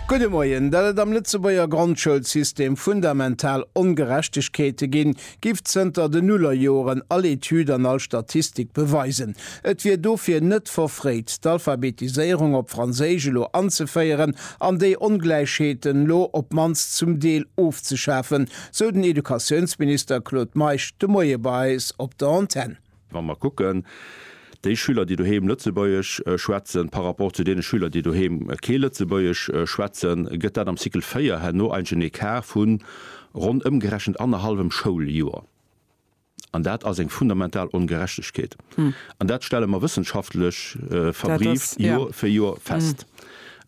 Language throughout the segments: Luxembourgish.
Gudde Moien. Dat et am Lëtzebuerger Grondschoulsystem fundamental Ongerechtegkeete ginn, giff zënter den Nullerjoren all Etüd an all Statistik beweisen. Et wier dofir net verfréit, d'Alphabetiséierung op Franséisch elo anzeféieren an déi Ongläichheeten elo op d'mannst zum Deel ofzeschafen, sou den Educatiounsminister Claude Meisch de Moie bei eis op der Antenn. Wa mer kucken, déi Schüler, déi doheem Lëtzebuergesch schwätzen, par rapport zu deene Schüler, déi doheem kee Lëtzebuergesch schwätzen, gëtt dat am Cycle 4 herno eigentlech en Ecart vu ronn ëmgerechent annerhallwem Schouljoer. An dat ass eng fundamental Ongerechtegkeet. An dat stelle mer wëssenschaftlech verbrieft Joer fir Joer fest.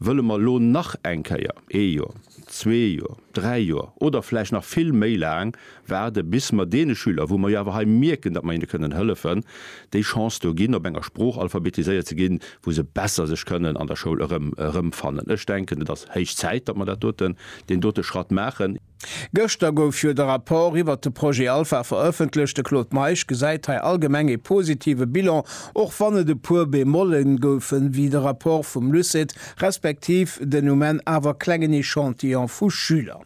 Wëlle mer elo nach eng Kéier, ee Joer, zwee Joer, dräi Joer oder vläicht nach vill méi laang waarde bis mer deene Schüler, wou mer jo awer hei mierken, datt mer hinne kënnen hëllefen, déi Chance do ginn, op enger Sprooch alphabetiséiert ze ginn, wou se besser sech kënnen an der Schoul erëm erëmfannen. Ech denken, et ass héich Zäit, datt mer dat doten, deen dote Schratt maachen. Gëschter gouf jo de Rapport iwwert de Projet Alpha verëffentlecht. De Claude Meisch gesäit hei allgemeng ee positive Bilan, och wann et e puer Bemolle goufen, wéi de Rapport vum LUCET respektiv den Ument awer klengen Echantillon vu Schüler.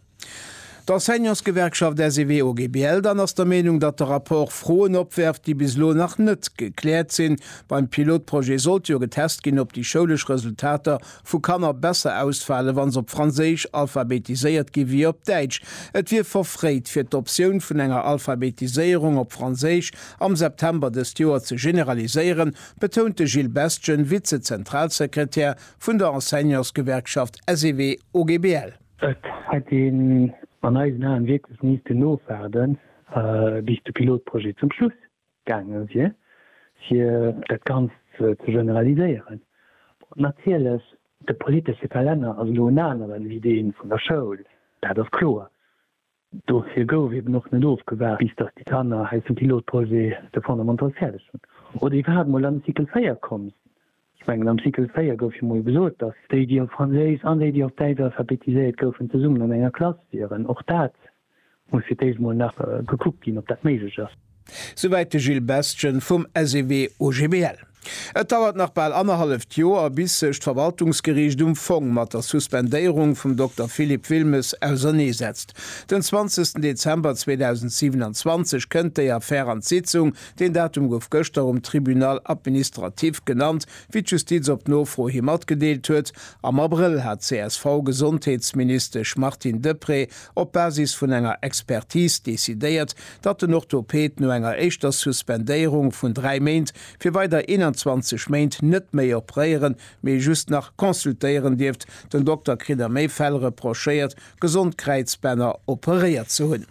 D'Enseignantsgewerkschaft SEW-OGBL dann ass der Meenung, datt de Rapport Froen opwerft, déi bis elo nach net gekläert sinn. Beim Pilotprojet sollt jo getest ginn, ob déi schoulesch Resultater vu Kanner besser ausfalen, wa se op Franséisch alphabetiséiert ginn, wéi op Däitsch. Et wier verfréit, fir d'Optioun vun enger Alphabetiséierung op Franséisch am September dëst Joer ze generaliséieren, betount de Gilles Bestgen, Vize-Zentralsekretär vun der Enseignantsgewerkschaft SEW-OGBL. Et hätt een an eisen Aen wierklech missten nofwaarde bis de Pilotprojet zum Schluss gaange wier, fir dat Ganzt ze generaliséieren. Natierlech, de politesche Kalenner ass elo en aneren ewéi dee vun der Schoul, dat ass kloer. Dofir gouf eben och net ofgewaart, bis dass déi Kanner hei zum Pilotprojet de Fondamentals fäerdeg hunn oder iwwerhaapt mol an de Cycle 4 komm sinn. Ech mengen, am Cycle 4 gouf jo mol gesot, dass déi, déi op Franséisch an déi, déi op Däitsch alphabetiséiert goufen, zesummen an enger Klass wieren. Och dat muss fir d'éischt mol nach gekuckt ginn, ob dat méiglech ass. Souwäit de Gilles Bestgen vum SEW-OGBL. Et dauert nach bal annerhalleft Joer, bis sech d'Verwaltungsgeriicht um Fong mat der Suspendéierung vum Dokter Philippe Wilmes auserneesetzt. Den 20 Dezember 2027 kënnt déi Affär an d'Sitzung. Deen Datum gouf gëschter um Tribunal administratif genannt, wéi d'Justiz op Nofro hi matgedeelt huet. Am Abrëll hat d'CSV-Gesondheetsministesch Martine Deprez op Basis vun enger Expertis decidéiert, datt den Orthoped no enger éischter Suspendéierung vun 3 Méint fir weider 21 Méint net méi opréieren, mee just nach consultéieren dierft. Den Dokter kritt a méi Fäll reprochéiert, gesond Kräizbänner operéiert ze hunn.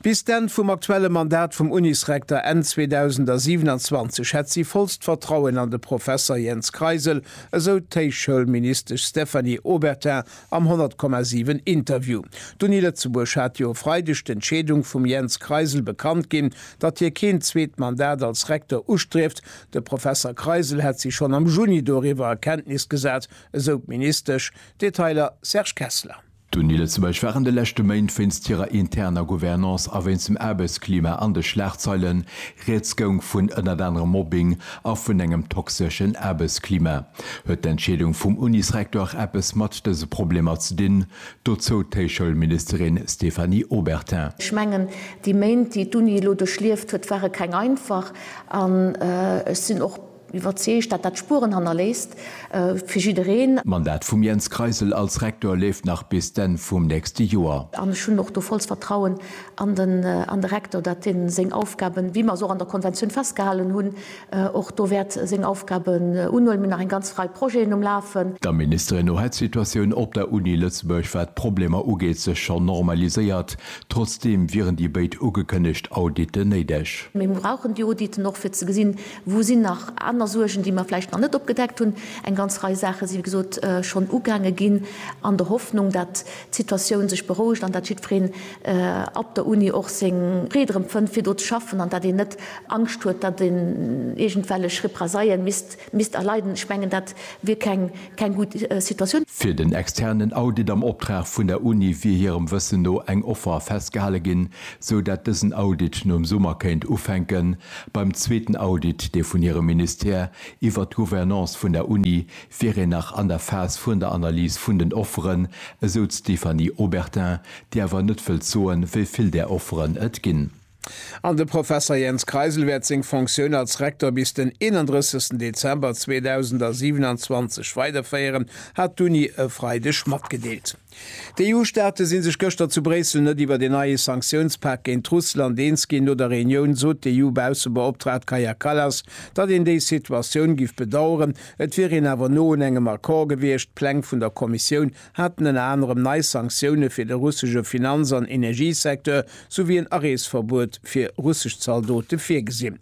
Bis d'Enn vum aktuelle Mandat vum Unisrekter Enn 2027 hätt si vollst Vertrauen an de Professer Jens Kreisel, esou d'Héichschoulministesch Stéphanie Obertin Am 100,7 Interview d'Uni Lëtzebuerg hat jo e Freideg d'Entscheedung vum Jens Kreisel bekannt ginn, datt hie keen zweet Mandat als Rektor ustrieft. De Professer Kreisel hätt sech schonn am Juni doriwwer a Kenntnis gesat, esou d'Ministesch. Detailer, Serge Kessler. D'Uni Lëtzebuerg war an de leschte Méint wéinst hirer interner Gouvernance a wéinst dem Aarbechtsklima an de Schlagzeilen. Rieds goung vun ënnert anerem Mobbing a vun engem toxeschen Aarbechtsklima. Huet d'Entscheedung vum Unisrektor eppes mat dëse Problemer ze dinn? Dozou d'Héichschoulministerin Stéphanie Obertin. Ech mengen, déi Méint, déi d'Uni elo duerchlieft huet, ware keng einfach. An ech sinn och iwwerzeegt, datt dat Spueren hannerléisst fir jiddereen. D'Mandat vum Jens Kreisel als Rektor leeft nach bis d'Enn vum nächste Joer. An ech hunn och do volls Vertrauen an de Rektor, datt dee seng Aufgaben, wéi mer se och an der Konventioun festgehalen hunn, och do wäert seng Aufgaben unhuelen. Mir hunn nach eng ganz Rei Projeten um Lafen. Der Ministerin no hätt d'Situatioun op der Uni Lëtzebuerg, wat d'Problemer ugeet, sech schonn normaliséiert. Trotzdeem wieren déi béid ugekënnegt Auditen néideg. Mir brauchen déi Auditen och, fir ze gesinn, wou sinn nach aner Suergen, déi mer vläicht nach net opgedeckt hunn. Eng ganz Rei Saache si wéi gesot schonn ugaange ginn, an der Hoffnung, datt d'Situatioun sech berouegt an datt jiddwereen, op der Uni och seng Freed erëm fënnt fir do ze schaffen an datt een net Angscht huet, datt een iergendwellech Represaillen misst erleiden. Ech mengen dat wier keng gutt Situatioun. Fir den externen Audit am Optrag vun der Uni wier hirem Wëssen no eng Offer festgehale ginn, sou datt dësen Audit nom Summer kéint ufänken. Beim zweeten Audit, dee vun hirem Ministère iwwert d'Gouvernance vun der Uni wier een nach an der Phas vun der Analys vun den Offeren, esou d'Stéphanie Obertin, déi awer net wëllt soen, wéi vill där Offeren et ginn. An de Professer Jens Kreisel wäert seng Fonctioun als Rektor bis den 31 Dezember 2027 weiderféieren, hat d'Uni e Freideg matgedeelt. D'EU-Staate si sech gëschter zu Bréissel net iwwert een neie Sanktiounspak géint Russland eens ginn. No der Reunioun sot d'EU-Baussebeoptraagt Kaja Kallas, datt een déi Situatioun giff bedaueren. Et wier een awer no un engem Accord gewiescht. D'Pläng vun der Kommissioun haten ënner anerem nei Sanktioune fir de russesche Finanz an Energiesecteur souwéi en Areesverbuet fir russesch Zaldote virgesinn.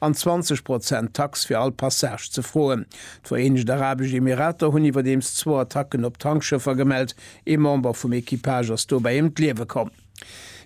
an 20 Prozent Tax fir all Passage ze froen. D'Vereenegt Arabesch Emirater hunn iwwerdeems zwou Attacken op Tankschëffer gemellt. Ee Member vum Equipage ass dobäi ëm d'Liewe komm.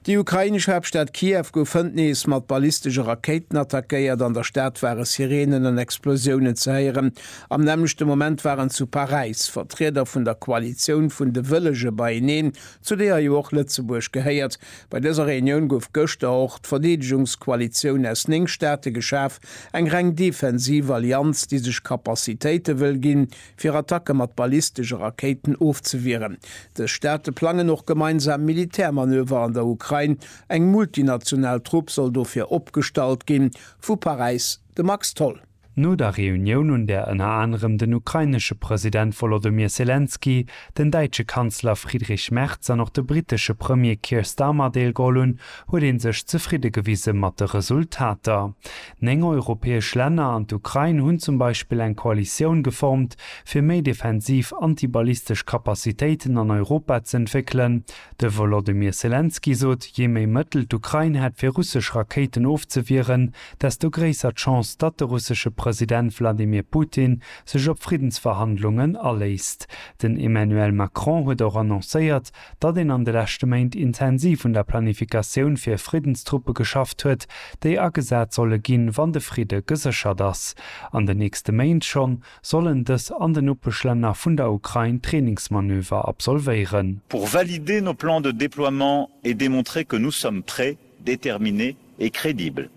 Déi ukrainesch Haaptstad Kiew gouf hënt nees mat ballistesche Rakéiten attackéiert. An der Stad ware Sireenen an Explosiounen ze héieren. Am nämmlechte Moment waren zu Paräis Vertrieder vun der Koalitioun vun de Wëllege beieneen, zu deeër jo och Lëtzebuerg gehéiert. Bei dëser Reunioun gouf gëschter och d'Verdeedegungskoalitioun aus 9 Staate geschaf, eng reng defensiv Allianz, déi sech Capacitéite wëll ginn, fir Attacke mat ballistesche Rakéiten ofzewieren. Dës Staate plangen och gemeinsam Militärmanöver an der Ukrain. Eng multinational Trupp soll dofir opgestallt ginn. Vu Paräis de Max Tholl. No der Reunioun, un där ënner anerem den ukrainesche President Wolodymyr Selenskyj, den däitsche Kanzler Friedrich Merz an och de brittesche Premier Keir Starmer deelgeholl hunn, huet ee sech zefridde gewise mat de Resultater. Néng europäesch Länner an d'Ukrain hunn zum Beispill eng Koalitioun geformt, fir méi defensiv antiballistesch Capacitéiten an Europa ze entwéckelen. De Wolodymyr Selenskyj sot, jee méi Mëttel d'Ukrain hätt fir russesch Rakéiten ofzewieren, desto gréisser d'Chance, datt de russesche President Wladimir Putin sech op Friddensverhandlungen aléisst. Den Emmanuel Macron huet och annoncéiert, datt een an de leschte Méint intensiv un der Planifikatioun fir Friddenstruppe geschafft huet, déi agesat solle ginn, wann de Fridde geséchert ass. An den nächste Méint schonn sollen dës an den Nopeschlänner vun der Ukrain Trainingsmanöver absolvéieren. Pour valider nos plans de déploiement et démontrer que nous sommes prêts, déterminé et crédible,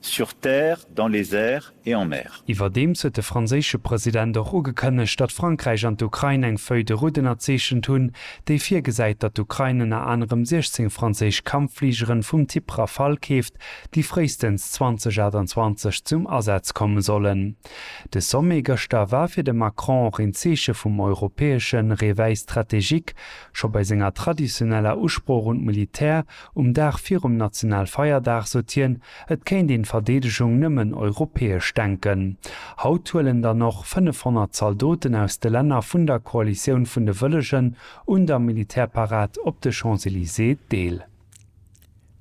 sur terre, dans les airs et en mer. Iwwerdeems huet de franséische President och ugekënnegt, datt Frankräich an d'Ukrain eng Feuille de route ënnerzeechent hunn, déi virgesäit, datt d'Ukrain ënner anerem 16 franséisch Kampffligeren vum Typ Rafale keeft, déi fréistens 2028 zum Asaz komme sollen. De Sommet gëschter war fir de Macron och een Zeeche vum europäesche Réveil stratégique. Scho bei senger traditioneller Usprooch un d'Militär Um Dag virum Nationalfeierdag sot hien, et kéint een d'Verdeedegung nëmmen europäesch denken. Haut huelen dann och 500 Zaldoten aus de Länner vun der Koalitioun vun de Wëllegen un der Militärparad op de Champs-Elysées deel.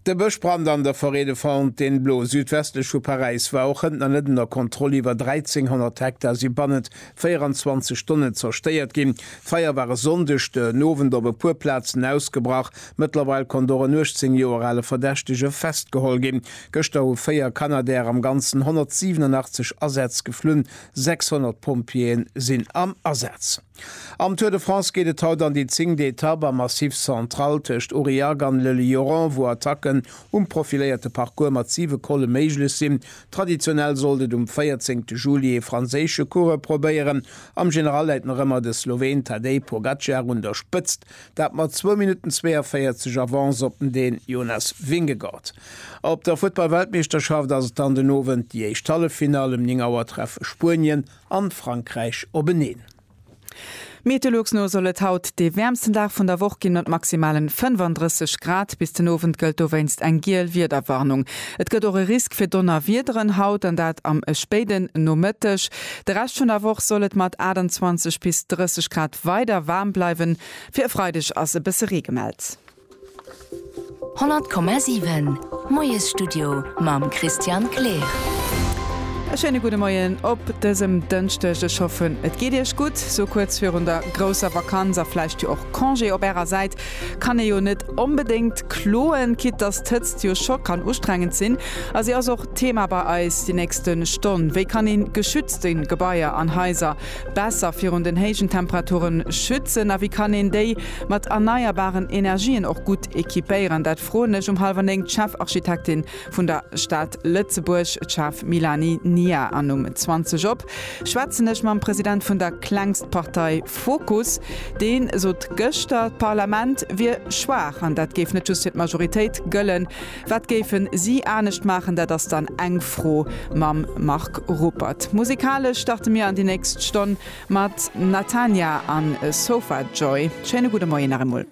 De Bëschbrand an der Forêt de Fontainebleau südwestlech vu Paräis war och hënt nach net ënner Kontroll, iwwer 1.300 Hektar si bannent 24 Stonnen zerstéiert ginn. D'Feier war e Sonndeg den Owend op e puer Plazen ausgebrach. Mëttlerweil konnt och en 18 Joer ale Verdächtege festgeholl ginn. Gëschter hu véier Canadair am Ganzen 187 Asätz geflunn. 600 Pompjeeë sinn am Asaz. Am Tour de France geet et haut an déi zéngte Etapp am Massif Central tëscht Aurillac an Le Lioran, wou Attacken um profiléierte Parcours mat siwe Colle méiglech sinn. Traditionell sollt et um 14 Juli ee franséische Coureur probéieren. Am General läit nach ëmmer de Sloween Tadej Pogacar un der Spëtzt, dat mat zwou Minutten 42 Avance op den Dän Jonas Vingegaard. Op der Futtball-Weltmeeschterschaft ass et dann den Owend déi éischt Halleffinall. Ëm 9 Auer treffe Spuenien an Frankräich openeen. Meteolux no soll et haut dee wäermsten Dag vun der Woch ginn, mat maximalen 35 Grad. Bis den Owend gëllt dowéinst eng giel Wiederwarnung. Et gëtt och e Risk fir Donnerwiederen haut, an dat am spéiden Nomëtteg. De Rescht vun der Woch soll et mat 28 bis 30 Grad weider waarm bleiwen. Fir e Freideg ass e bësse Ree gemellt. 100,7 Moiesstudio mam Christian Kleer. E schéine gudde Moien op dësem Dënschdeg. Ech hoffen, et geet Iech gutt. Sou kuerz virun der grousser Vakanz a vläicht jo och Congé op Ärer Säit kann ee jo net onbedéngt kloen, quitte dass d'Hëtzt jo scho kann ustrengend sinn. A si ass och Thema bei eis déi nächste Stonn. Wéi kann ee geschützte Gebaier an Haiser Besser virun den héijen Temperaturen schützen? A wéi kann een déi mat erneierbaren Energien och gutt equipéieren? Dat froen ech um hallwer néng d'Chefarchitektin vun der Stad Lëtzebuerg, d'Schaf Milani Nia, an um 20 op schwätzen ech mam President vun der klengst Partei Fokus. Dee sot gëschter, d'Parlament wier schwaach an dat géif net just fir d'Majoritéit gëllen. Wat géifen si anescht maachen, dat ass dann eng Fro mam Marc Ruppert. Musikalesch starte mir an déi nächst Stonn mat Natania a Sofa Joy. Schéine gudde Moien nach emol.